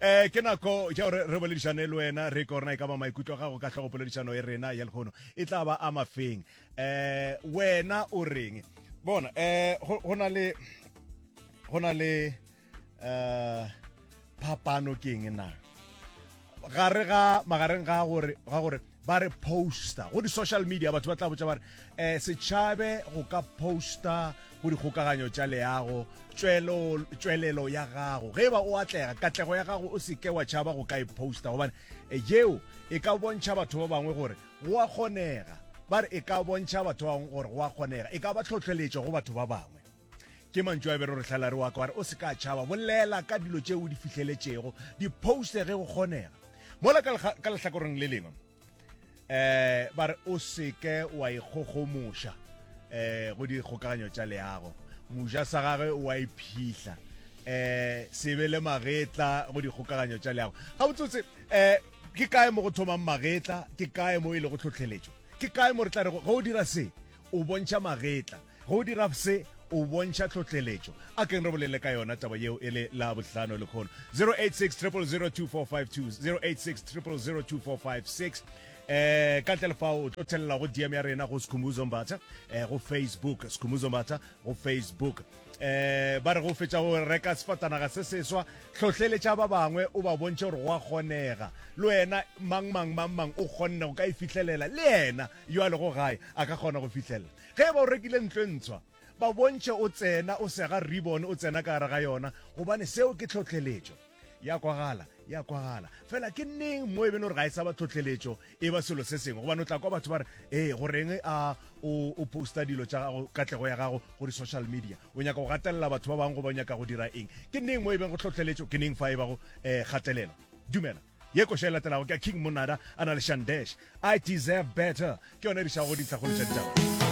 um ke nako ja gore re boledišane le wena re ke gorena e ka ba maikutlo gago ka tlhogo poledišano e rena ya lekgono e tla ba a mafeng um wena o reng bona um go na le go na le um phapano ke eng na gare ga magareng ga gore ba re poster go di-social media batho ba tla botsa ba re um setšhabe go ka poster go dikgokaganyo tša leago tšwelelo ya gago ge ba o atlega katlego ya gago o seke wa tšhaba go ka e poster gobane eh, yeo e ka bontšha batho ba bangwe gore go a kgonega ba re e ka bontšha batho ba bangwe gore go a kgonega e ka ba tlhotlheletšo go batho ba bangwe ke mantšu a bere rotlhalare wa ka wa re o se ka tšhaba bolela ka dilo tše o di fihleletšego di poste ge go kgonega mola ka lehlakoreng le lengwe um ba re o seke wa ikgogomoša um go dikgokaganyo tša leago moja sa gagwe wa iphihla um se be le magetla go dikgokaganyo tša leago ga botsotse um ke kae mo go thomang magetla ke kae mo e le go tlhotlheletšo ke kae mo re tla re ge o dira se o bontšha magetla Ge o dira se, o bontšha tlhohleletšo. A tleng re bolele ka yona taba yeo e le Labohlano, lekgolo. 086 0002456, 086 0002456. Eh, ka ntle le fao, o tlo thelela go DM ya rena go Skhumbuzo Mbatha, eh, go Facebook, Skhumbuzo Mbatha, go Facebook. Eh, ba re go fetša go reka sefatanaga se seswa, tlhohleletša ba bangwe, o ba bontšhe gore go a kgonega. Le wena, mang, mang, mang, mang, o kgonne go ka e fihlelela. Le yena, yo a lego gae, a ka kgona go fihlelela. Ge e ba o rekile ntlo e ntshwa, ba bontšhe o tsena o sega ribbon o tsena ka gare ga yona, gobane seo ke tlhohleletšo. E a kwagala, e a kwagala. Fela ke neng mo e beno re ga e sa ba tlhohleletšo, e ba selo se sengwe? Gobane o tla kwa batho ba re, Ee, go reng a o, o posta dilo tša gago, katlego ya gago, go di-social media? O nyaka go gatelela batho ba bangwe goba o nyaka go dira eng? Ke neng mo e bego tlhohleletšo, ke neng fa e bago um kgatelelo? Dumela. Ye koša e latelago ke ya King Monada a na le Shandesh, I Deserve Better, ke yona e re išago go dintlhakgolo tša ditaba.